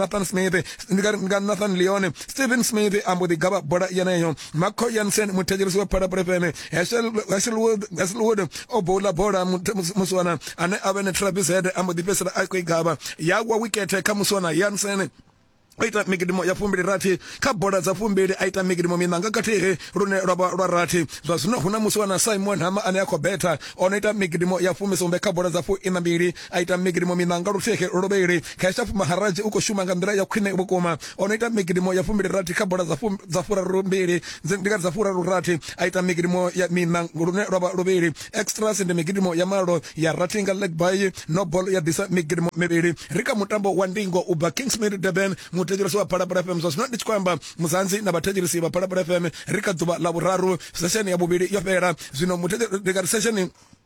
Nathan Smith ndi nga nga Nathan Leone Stephen Smith ambo ḓi gavha bola yeneyo Marco Jansen muthetshelesi wa Phalaphala FM Hasselwood Hasselwood o bowla bola muswana ane avhe ne Travis Head ambo ḓi fhesela a khou i gavha ya wa wicket kha muswana Jansen o ita migidimo ya fumbili rathi kha bola dza fumbili a ita migidimo minanga kathihi lune lwa vha lwa rathi zwa zwino hu na musi wana simon hama ane a khou betha o no ita migidimo ya fumisumbe kha bola dza fu ina mbili a ita migidimo miṋa nga luthihi luvhili kha Eshafu Maharadzi u khou shuma nga nḓila ya khwine vhukuma o no ita migidimo ya fumbili rathi kha bola dza furaru mbili ndi nga dza furaru rathi a ita migidimo ya miṋa lune lwa vha luvhili extras ndi migidimo ya malo ya rathi nga leg by no ball ya ḓisa migidimo mivhili ri kha mutambo wa ndingo u bva Kingsmead Durban muthetshelesi wa Phalaphala FM zwa zwino ndi tshi khou amba muzanzi na vhathetshelesi vha Phalaphala FM ri kha ḓuvha ḽa vhuraru sesheni ya vhuvhili yo fhela zwino muthetshelesi sesheni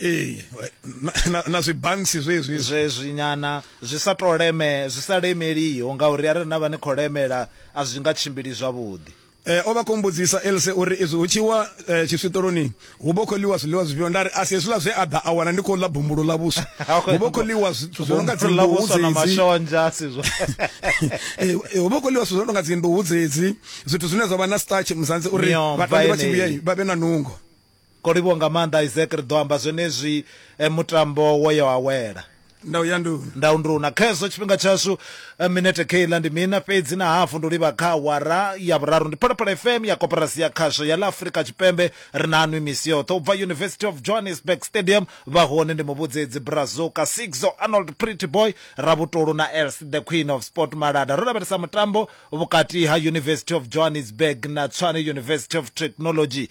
ee na, na zwibansi zwezwi zwezwi nyana zwi sa to leme zwi sa lemeliho ngauri arali na vha ni khou lemela a zwi nga tshimbili zwavhuḓi Eh, o vha khou mbudzisa else uri izwi hu tshi wa eh, tshiswiṱoloni hu vha khou ḽiwa zwiḽiwa zwifhio nda ri a si hezwiḽa zwe a ḓa a wana ndi khou ḽa bumbulo ḽa vhuswa hu vha khou ḽiwa zwithu zwo no nga dzinḓuhu dzedzi mashonzha si zwo eh, eh, hu vha khou ḽiwa zwithu zwo no nga dzinḓuhu dzedzi zwithu zwine zwa vha na starch muzanzi uri vhatambi vha tshi vhuya vha vhe na nungo Ko livhuwa nga maanḓa Isaac ri ḓo amba zwenezwi mutambo wo ya wa wela. Ndau ya nduni. Ndau nduna. Khezwo tshifhinga tshashu minete kheiḽa ndi mina fhedzi na hafu ndi u livha kha awara ya vhuraru. Ndi Phalaphala FM ya Koporasi ya Khasho ya ḽa Afrika Tshipembe ri naanwi misi yoṱhe ubva University of Johannesburg Stadium vha hone ndi Muvhudzedzi Brazuka, Sigzo, Arnold Pretty Boy, Ravhutolu na Else the Queen of Sport Malada. Ro lavhelesa mutambo vhukati ha University of Johannesburg na Tshwane University of Technology.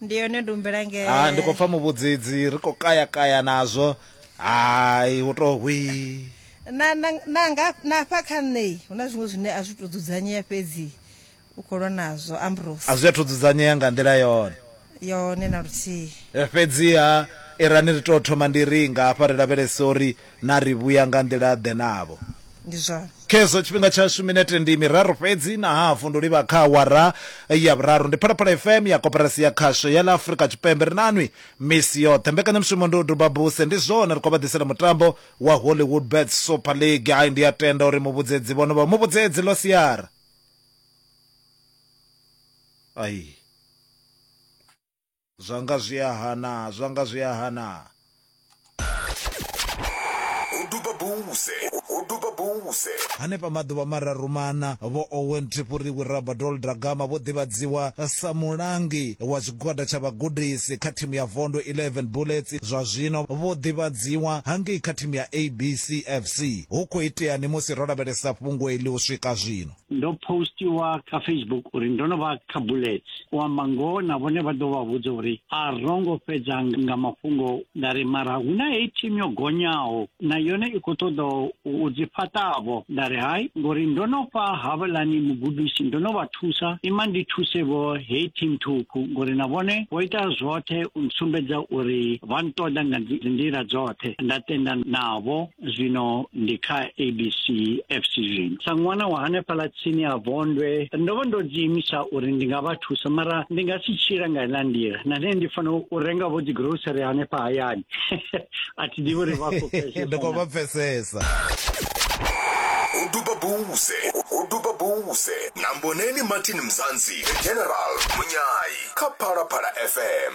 Ndi yone ndumbela nge. Ha ndi khou pfa muvhudzidzi ri khou kaya kaya nazwo hai hu to hwii. Na, na, na, nga, na hafha kha nṋe hu na zwiṅwe zwine a zwi tou dzudzanyea fhedzi u khou lwa nazwo Ambrose. A zwi athu dzudzanyea nga nḓila yone. Yone na luthihi. Fhedziha irani ri tou thoma ndi ri nga hafha ri lavhelese uri na ri vhuya nga nḓila-ḓe navho? Ndi zwone. Khezwo tshifhinga tshashu minete ndi miraru fhedzi na hafu ndo livha kha awara ya vhuraru. Ndi Phalaphala FM ya Koporasi ya Khasho ya ḽa Afrika Tshipembe. Ri na nwi misi yoṱhe. Mbekanyamushumo ndi u duba buse. Ndi zwone ri khou vha ḓisela mutambo wa Hollywood Bets Super League. Hai ndi a tenda uri muvhudzedzi vhono vha muvhudzedzi ḽo siara. Ai. zwa nga zwi a hana zwa nga zwi a hana Uduba Buse, Uduba Buse. Hanefha maḓuvha mararu mana, Vho Owen Tipuriwi Rabadol Dragama vho ḓivhadziwa sa mulangi wa tshigwada tsha vhagudisi kha thimu ya Vondo 11 Bullets. Zwa zwino vho ḓivhadziwa hangei kha thimu ya ABC FC. Hu khou iteani musi ro lavhelesa fhungo iḽi u swika zwino? ndo postiwa kha facebook uri ndo no vha kha bullets u amba ngoho na vhone vha ḓo vha vhudza uri a ro ngo fhedza nga mafhungo nda ri mara hu na heyi thimu yo gonyaho na yone i khou ṱoḓa u dzi fhaṱavho nda ri hai ngori ndo no fha havhalani mugudisi ndo no vha thusa ima ndi thuse vho heyi thimu thukhu ngori na vhone vho ita zwoṱhe u sumbedza uri vha nṱoḓa nga nḓila dzoṱhe nda tenda navho zwino ndi kha abc fc zwino sa ṅwana wa hanefhaḽa tsini ha vondwe ndo vha ndo dziimisa uri ndi nga vha thusa mara ndi nga si tshila nga iḽa nḓila na nṋe ndi fanela u renga vho dzigrocery hanefha hayani a thi ḓivhi uri vha khou pfesesandi khou vha pfesesa u duba buze u duba buze na mboneni martin mzansi the general munyayi kha phalaphala fm